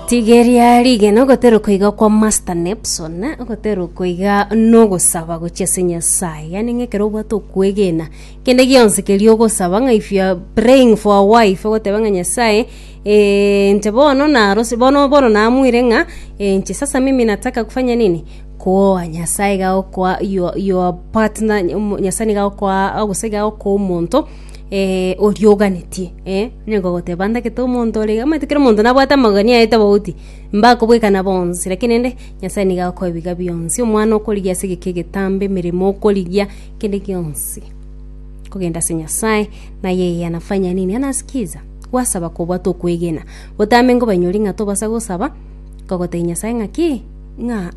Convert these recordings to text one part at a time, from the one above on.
Rigeria rigena ogoterokwa iga kwa Master Nepson, ogoterokwa iga nogosaba gochia ase Nyasaye, yaani ng'a ekero obwate okwegena kende gionsi keria ogosaba ng'a if you are praying for a wife ogoteba ng'a Nyasaye eh, inche bono narose bono bono naamwire ng'a eh, inche sasa mimi nataka kufanya nini kwoa Nyasaye iga agokoa your your partner, Nyasaye niga agokoa gose iga agokoa omonto. oria oganetie, eh, onye gogoteba ndagete omonto ore iga, omanyete kera omonto nabwate amagani aye tobauti, mbakobwekana bonsi lakini rende Nyasaye nigo akoe biga bionsi, omwana okorigia ase egeka egetambe, emeremo okorigia, kende gionsi kogenda ase Nyasaye, na yeye anafanya nini? Anasikiza, gwasaba kobwate okwegena, otame nkobanyori ng'a tobasa gosaba, kogotebia Nyasaye ng'a ki, ng'a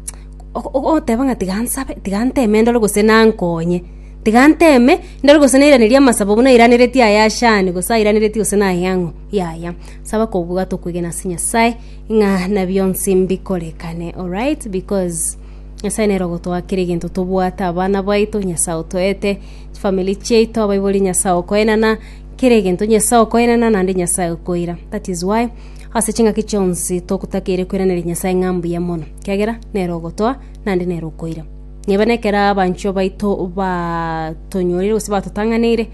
o- o- oteba ng'a tiga nsabe, tiga nteme ndore gose nankonye. Tiga nteme, ndore gose nairanerie amasabo buna airaneretie aya Shani, gose airaneretie gose nay'ang'o. Yaya, saba kobwata okwegena ase Nyasae, ng'a na bionsi mbikorekane alright, because Nyasae nere ogotoa kera egento tobwate, abana baito Nyasae otoete, chifamiri chiaito, abaibori Nyasae okoenana, kera egento Nyasae okoenana naende Nyasae okoira. That is why, ase ching'aki chionsi togotakeire koiraneria Nyasae ng'a mbuya mono, ekiagera nere ogotoa, naende nere okoira. Nigo nekero abanchwa baito batonyorire gose batotang'aneire,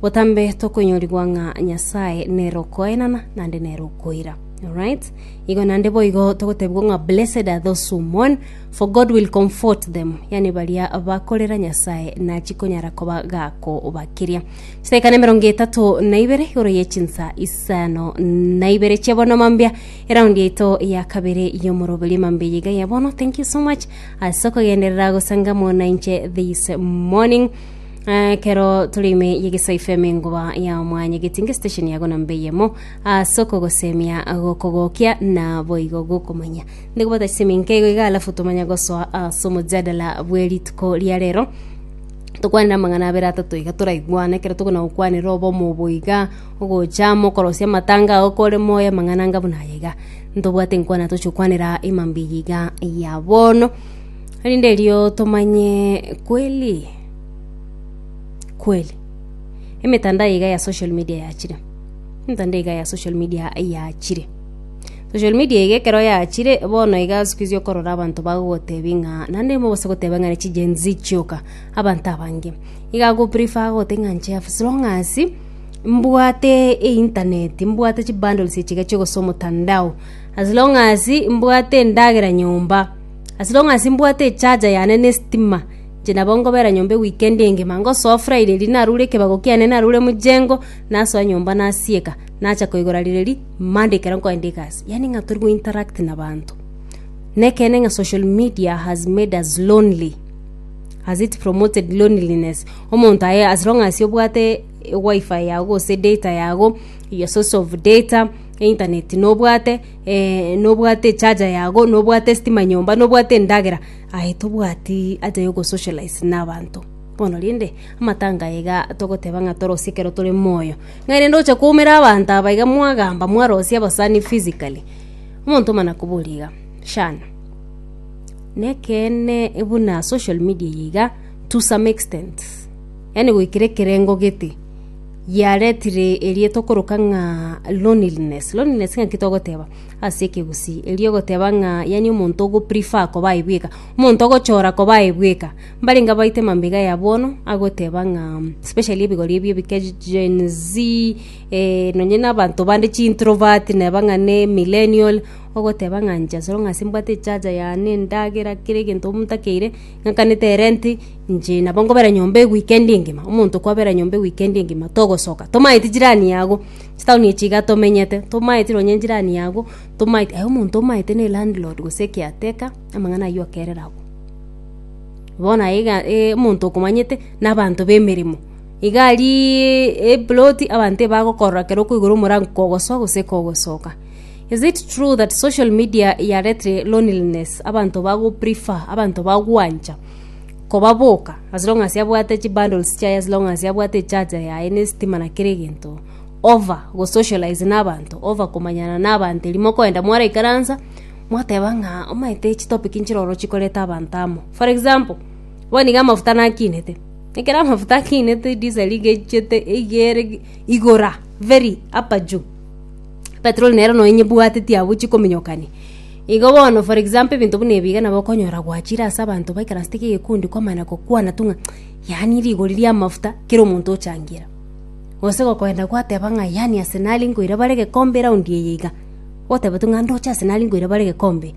botambe tokoinyorigwa ng'a Nyasae nere okoenana naende nere okoira. Alright? Igo naende boigo togotebigwa ng'a blessed are those who mourn, for God will comfort them. Yaani baria bakorera Nyasae nachi konyara koba gakobakiria. Chidakika na emerongo etato na ibere igoro ye chinsa isano na ibere chia bono mambia. Eround yaito ya kabere y'omoroberio mambia eyeiga ya bono. Thank you so much. ase okogenderera gosangamo nainche this morning Eh, kero tore ime yegesa fm engoba ya mwanya getinge station yago namba eyemo ase okogosemia gokogokia na boigo gokomanya ndigobata ase eminke igo iga alafu tomanya gosoa ase omojadala bwerituko ria rero tokwanera amang'ana abere atato iga toraigwane kero tokona gokwanera obomo obo iga ogochama okorosia amatanga ago kore moyo amang'ana anga buna aya iga Ntobwate nkwana toche okwanera Ima Mbiya iga ya bono, erinde erio tomanye kweli kweli. Emetandao iga ya social media yachire, emetandao iga ya social media yachire. Social media iga ekero yachire, bono iga siku hizi okorora abanto bagogotebia ng'a naende mogose goteba ng'a ne chi Gen-z chioka, abanto abange. Iga agoprefer gote ng'a inche as long as. mbwate eintaneti, mbwate chibundles echi iga chigosa omotandao, as long as mbwate endagera nyomba, as long as mbwate echaja yane na estima, inche nabo nkobera nyomba eweekend engima, ngosoa friday riria narure ekebago kiane narure mochengo, nasoa nyomba nasieka, nacha koigora riroria monday ekero nkoenda egasi, yaani ng'a tori gointeract nabaanto. Nekeene ng'a social media has made us lonely. Has it promoted loneliness? Omonto aye as long as obwate wifi yago gose data yago, your source of data, internet nobwate, eh, nobwate echarger yago, nobwate estima nyomba, nobwate endagera, aye tobwati haja ya ogosocialize na abanto. Bono rende, amatanga aya iga togoteba ng'a torosie ekero tore moyo. Ng'a rende oche koumera abanto aba iga mwagamba mwarosia abasani physically, omonto omanakobori iga, shana. Nekeene buna social media eye iga to some extent, yaani goikera ekerengo gete, yaretire eria tokoroka ng'a loneliness. Loneliness ng'aki togoteba ase ekegusii? Erio ogoteba ng'a yaani omonto ogo prefer koba aye bweka, omonto ogochora koba aye bweka. Mbarenge abaite mambia ya bono, agoteba ng'a especially ebigori ebi ebike gen z, nonye na abanto bande chi introvert, neba ng'a ne millennial. Ogoteba ng'a inche asore ng'a ase mbwate echacha yane, endagera, kera egento omonto akeire, ng'akanete erenti, inche nabo nkobera nyomba ewikendi engima, omonto kwabera nyomba ewikendi engima, togosoka, tomaeti jirani yago, chitaoni echi iga tomenyete, tomaeti nonye jirani yago, tomaeti aye omonto omaete na elandlord gose ekeateka, amang'ana aywo akerire agwo. Bono aye iga omonto okomanyete, na abanto ba emeremo, iga ariiiii eploti abanto ebagokorora ekero okoigora omorango kogosoa gose kogosoka. Is it true that social media yarete loneliness abanto bago prefer abanto bagwancha koba boka as long as abwate chi bundles chiaye as long as abwate echaja yaye ne sitima na kere egento over go socialize na abanto over komanyana na abanto eri mokoenda mwara ikaransa mwateba ng'a omanyete chi topic nchiroro chikoreta abanto amo for example bono iga amafuta nakinete ekero amafuta akinete diesel iga echete iga ere igora very upper juu Petero onye nere nonye bwateti abwo chikominyokani. Igo bono for example ebinto buna ebi iga nabo okonyora gwachire ase abanto baikaransete ki egekundi kwamana gokwana tu ng'a yaani rigori ria amafuta kera omonto ochangira. Gose gokoenda gwateba ng'a yaani ase nare nkoira bare egekombe round eye iga, oteba tu ng'a ndoche ase nare nkoira bare egekombe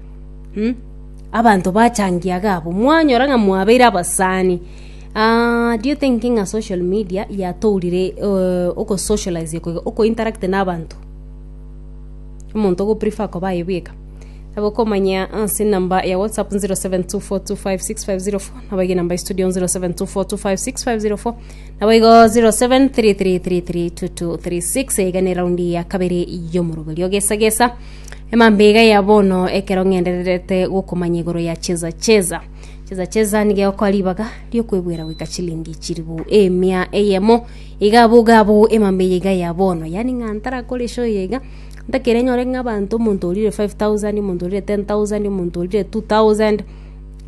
abanto bachangia iga abwo mwanyora ng'a mwabeire abasani. Do you think ng'a social media yatourire ogosocialize koigo, okointeract na abanto? Omonto ogoprefer koba aye bweka. Nabo okomanya ase enamba ya WhatsApp 0724256504, nabo ege enamba ya estudio 0724256504, nabo igo 0733332236 iga ne round ya kabere y'omoroberio ogesa gesa. Emambia iga ya bono ekero ng'endererete gokomanya igoro ya cheza cheza. Chesa chesa nigegokoa ribaga ri'okwegwera goika chilingi chiribu emia eyemo. Iga abwo iga abwo emamba eye iga ya bono. Yaani ng'a ntarakore show eye iga, ntakere nyore ng'a abanto omonto orire 5000, omonto orire 10000, omonto orire 2000,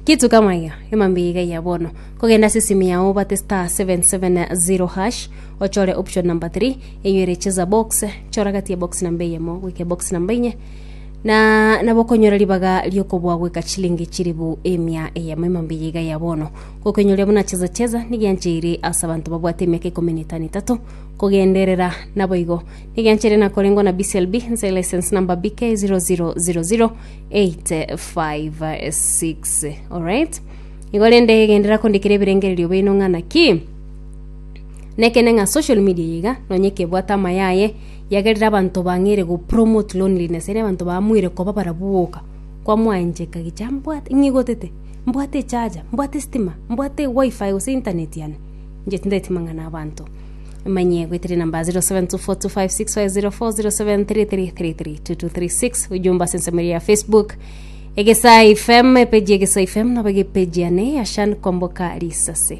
kitu kama hiyo. Emamba eye iga ya bono. Kogenda ase esimi yao obate star 770 hash, ochore option number three, enywe ere chesa box, chora gati ya box namba eyemo goika box namba inye, Na nabokonyora ribaga ri'okobua goika chilingi chilifu emia eyemo ime mbiya iga ya bono, gokenyoria buna chezacheza nigiancheire ase abanto babwate emiaka ikomi na etano etato kogenderera. Naboigo nigiancheire nakorengwa na BCLB nse license number BK 0000856. Alright. Igo rende genderera kondikera ebirengererio bino ng'a naki nekende ng'a social media iga nonye kebwate amayaye Yagerire abanto bang'eire go promote loneliness, yaani abanto baamoire koba barabwo boka. Kwamwancheka gicha, mbwate, ng'a igotete, mbwate echaja, mbwate estima, mbwate wifi gose internet yane. Inche tindeti mang'ana abanto. Manye goeteria namba 072425600407333236 ujumbe ase ensemo ya Facebook. Egesaa FM, epeji ya Egesaa FM, nabo egepeji yane ya Shan Komboka Risase.